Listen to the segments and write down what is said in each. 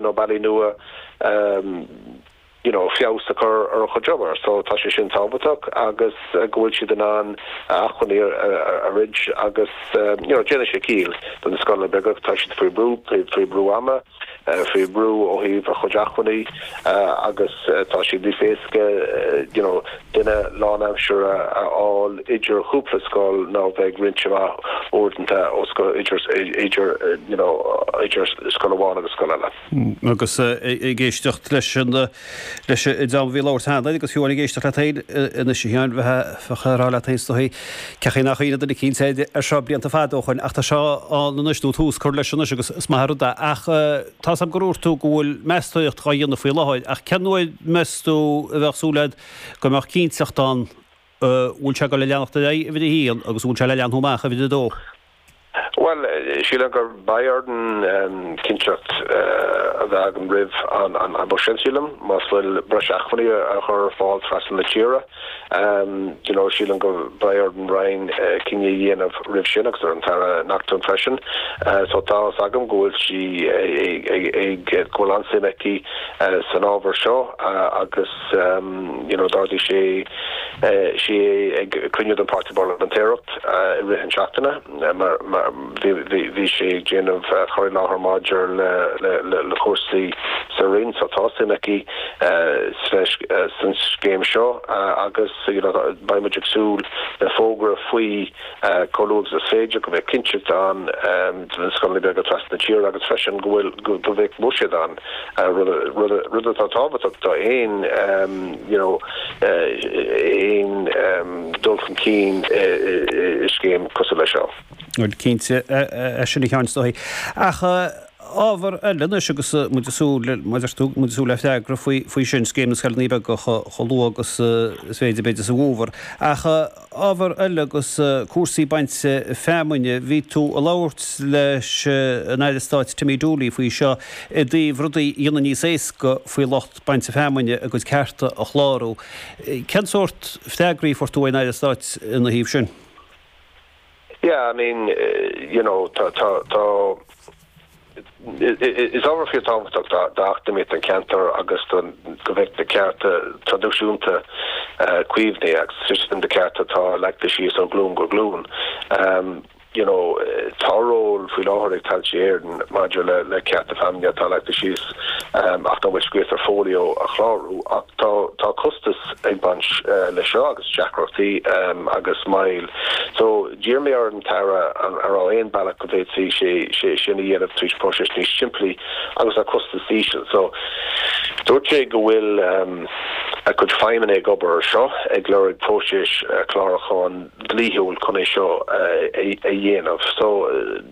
nó bealaí nua you know feabhas a chur ar a chuid obair so tá sé sin tábhachtach agus go bhfuil siad in ann acmhainní a roinnt agus you know déanann sé ciall do na scoileanna beaga tá siad faoi brú faoi brú ama faoi brú ó thaobh a chuid acmhainní agus tá siad sé níos éasca you know duine lánaimsire a fháil idir chúpla scoil ná bheith roinnte amach uaireanta ó scoil idir idir you know idir scoil amháin agus scoil eile. Agus ag éisteacht leis an leis an dream a bhí ag labhairt cheana agus fiú amháin ag éisteacht leat féin anois a Sheáin bheadh bheadh tú ag rá leat féin is dóichí cén chaoi nár cuimhníodh air seo blianta fada ó shoin ach tá seo ann anois nó tús cur leis anois agus is maith an rud é ach Tá's agam gur dhúirt tú go bhfuil meastóíreacht dhá dhéanamh faoi láthair, ach cén uair meas tú a bheadh súil agat go mbeadh cinnteacht ann go bhfuil sé le leanacht ar aghaidh, uimhir a haon, agus go bhfuil sé le leathnú amach, uimhir a dó? Bhuel, sílim go mbeidh orainn cinnteacht a bheith agam roimh an mbuiséad sin, sílim, má bhfuil breis achmhainní a chur ar fáil trasna na tíre. you know Sílim go mbeidh ar an Roinn cinneadh a dhéanamh roimh sin agus ar an tAire Naughton freisin so tá fhios agam go bhfuil sí ag go bhfuil an-suim aici san ábhar seo agus you know d'ardaigh sé sí é ag cruinniú den Pháirtí Parlaiminteach i rith an tseachtaine mar Bhí sé ag déanamh cur i láthair maidir le cúrsaí sa Roinn seo. Tá suim aici sa scéim seo agus beidh muid ag súil le fógra faoi chomh luath agus is féidir, go mbeidh cinnteacht ann do na scoileanna beaga trasna na tíre agus freisin go bhfuil, go mbeidh buiséad ann, rud atá tábhachtach d'aon dul chun cinn i scéim cosúil leis seo. Cinnte é sin a Sheáin is dóigh. Ach ábhar eile anois agus muid ag súil le, mar a deir tú, muid ag súil le freagra faoi sin, Scéim na Scoileanna Beaga chomh luath agus is féidir, b'fhéidir sa bhfómhar. Ach ábhar eile agus cúrsaí bainte feamainne, bhí tú ag labhairt leis an Aire Stáit Timmy Dooley faoi seo i dtaobh rudaí a dhéanamh níos éasca faoi lucht bainte feamainne a gcuid cearta a chlárú. Cén sórt freagraí a fuair tú ón Aire Stáit ina thaobh sin? Yeah, I mean, you know, tá, tá, tá, is ábhar fíor tábhachtach d'eacnamaíocht an cheantair agus don, go mbeidh na cearta traidisiúnta caomhnaithe agus sin na cearta atá leagtha síos ó ghlúin go glúin. You know, tá ról faoi láthair ag Tailte Éireann maidir le, le cearta feamainne atá leagtha síos ach nach bhfuil scríofa ar folio a chlárú ach. Tá costas ag baint leis seo agus deacrachtaí agus moill. So, d'iarr mé ar an Aire an raibh aon bealach go bhféadfaí sé sin a dhéanamh trí phróiseas níos simplí agus le costas íseal. So, dúirt sé go bhfuil a cuid feidhmeannaigh ag obair ar seo, ag lorg próiseas clárúcháin dlíthiúil chun é seo a dhéanamh. So,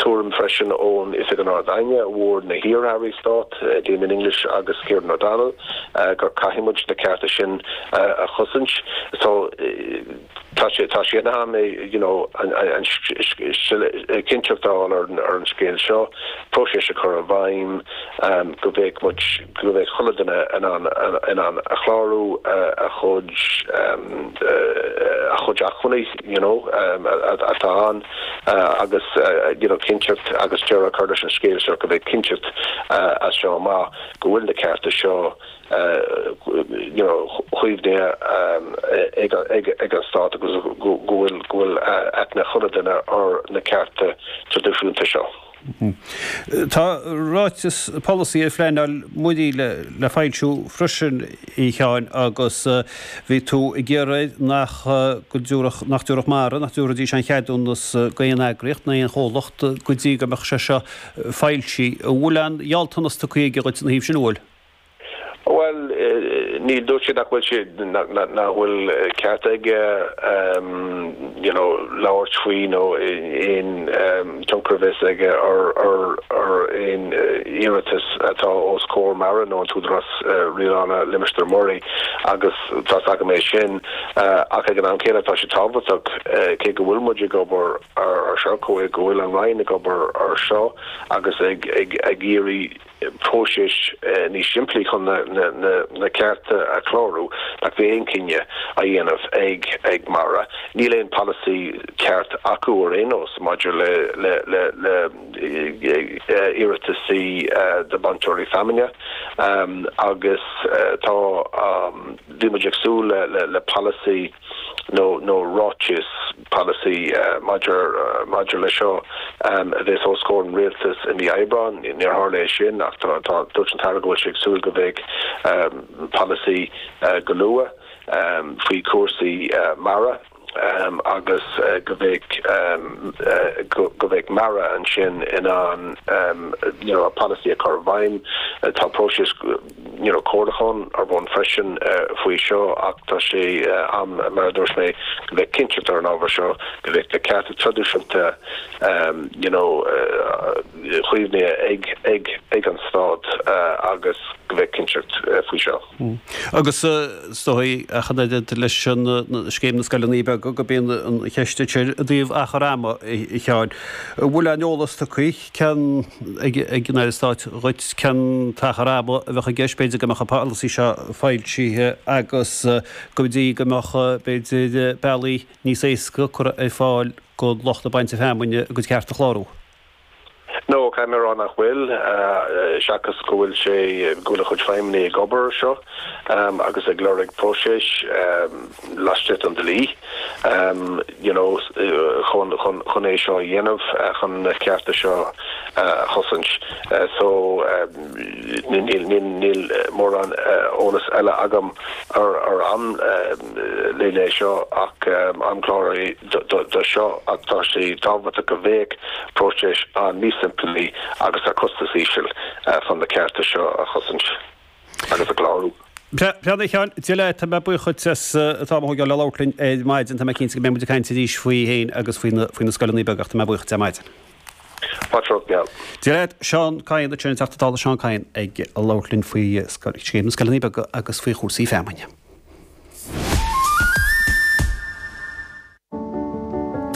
tuairim freisin ón Oifig an Ard-Aighne, a bhfuair na hiar-airí stáit, Damien English agus Kieran O'Donnell, go gcaithfidh muid na cearta sin a chosaint. So, tá sé, tá sé in am, you know, an, cinnteacht a fháil ar an scéal seo, próiseas a chur i bhfeidhm go bheadh muid, go bheadh chuile dhuine in ann, in ann a chlárú, a chuid, a chuid acmhainní. you know, atá ann agus you know cinnteacht agus deireadh a chur leis an scéal seo go mbeidh cinnteacht as seo amach go bhfuil na cearta seo you know caomhnaithe ag an stát agus go bhfuil go bhfuil aithne ag chuile duine ar na cearta tradisiúnta seo. Tá ráiteas polasaí ar phleanáil muirí le foilsiú freisin, a Sheáin, agus bhí tú ag iarraidh nach dtabharfadh Mara, nach dtabharfaidís aon cheadúnas d'aon eagraíocht ná aon chomhlacht go dtí go mbeadh sé seo foilsithe. An bhfuil aon ghealltanas tugtha aige dhuit ina thaobh sin, an bhfuil? Bhuel, dúirt sé nach bhfuil sé, nach bhfuil ceart aige you know labhairt faoi nó aon tionchar a bheith aige ar aon iarratas atá os comhair mara nó an tÚdarás Rialála Limistéir Muirí agus tá's agam é sin ach ag an am céanna tá sé tábhachtach cé go bhfuil muid ag obair ar seo, go bhfuil an Roinn ag obair ar seo agus ag iarraidh. próiseas níos simplí chun na cearta a chlárú nach bheidh aon chinneadh á dhéanamh ag mara níl aon polasaí ceart acu ar aon nós maidir le iarrataisí do bainteoirí feamainne agus tá bhí muid ag súil le polasaí nó ráiteas, polasaí, maidir leis seo a bheith os comhair an Rialtais i mí Aibreáin. Níor tharla sé sin ach dúirt an tAire go bhfuil sé ag súil go bheidh polasaí go luath faoi chúrsaí mara agus go bheidh mara ansin in ann polasaí a chur i bhfeidhm. Tá próiseas. You know comhairliúchán ar bun freisin faoi seo ach tá sé in am, mar a dúirt mé, go bheadh cinnteacht ar an ábhar seo, go bheadh na cearta traidisiúnta you know caomhnaithe ag an Stát agus go bheadh cinnteacht faoi seo. Agus ar ndóigh, ach an oiread le Scéim na Scoileanna Beaga, bíonn an cheist ansin i dtaobh achar ama, a Sheáin. An bhfuil a'n eolas tugtha? a Sheáin ag an Aire Stáit dhuit, cén t-achar ama a bheadh i gceist, b'fhéidir go mbeadh an polasaí seo foilsithe agus go dtí go mbeadh b'fhéidir bealaí níos éasca curtha ar fáil do lucht bainte feamainne a gcuid ceart a chlárú. No, caithfidh mé a rá nach bhfuil, seachas go bhfuil sé, go bhfuil a chuid feidhmeannaigh ag obair air seo agus ag lorg próiseas. laistigh den dlí you know chun chun chun é seo a dhéanamh chun na cearta seo a chosaint so níl níl níl mórán eolas eile agam ar ar an leithéid seo ach an chlár é do seo ach tá sé tábhachtach go bheadh próiseas ann níos simplí agus a costas íseal chun na cearta seo a chosaint agus a chlárú. Breá a Sheáin, Dia leat, tá mé buíoch duit as a theacht ag labhairt linn ar maidin. Tá mé cinnte go mbeidh muid ag caint arís faoi fheamainn agus faoi na faoi na scoileanna beaga ach tá mé buíoch duit ar maidin. Patrarc Geal. Dia leat, Seán Kyne, b'in an Teachta Dála Seán Kyne ag labhairt linn faoi scéim na scoileanna beaga agus faoi chúrsaí feamainne.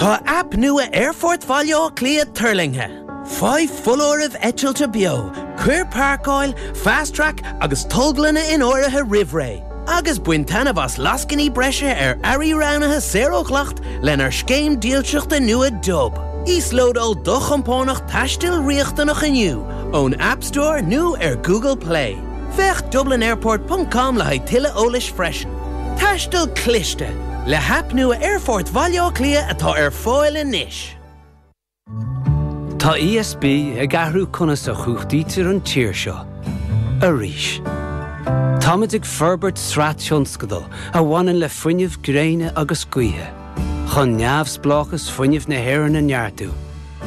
Tá aip nua Aerfort Bhaile Átha Cliath tuirlingthe. Faigh foláirimh eitilte beo, cuir páirceáil, Fast Track agus tolglanna in áirithe roimh ré, agus bain taitneamh as lascainí breise ar earraí roghnaithe saor ó dhleacht lenár scéim dílseachta nua Dub. Íoslódáil do chompánach taistil riachtanach inniu ón App Store nó ar Google Play. Féach dublinairport ponc com le haghaidh tuilleadh eolais freisin. Taisteal Cliste, Le haip nua Aerfort Bhaile Átha Cliath atá ar fáil anois. Tá ESB ag athrú conas a chumhachtaítear an tír seo. Arís. Táimid ag forbairt sraith tionscadal a bhaineann le fuinneamh gréine agus gaoithe, chun neamhspleáchas fuinnimh na hÉireann a neartú,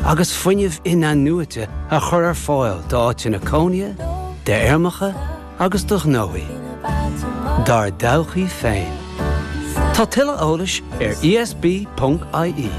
agus fuinneamh in-athnuaite a chur ar fáil d'áiteanna cónaithe, d'fheirmeacha agus do ghnóthaí dár dtodhchaí féin. Tá tuilleadh eolais ar esb.ie.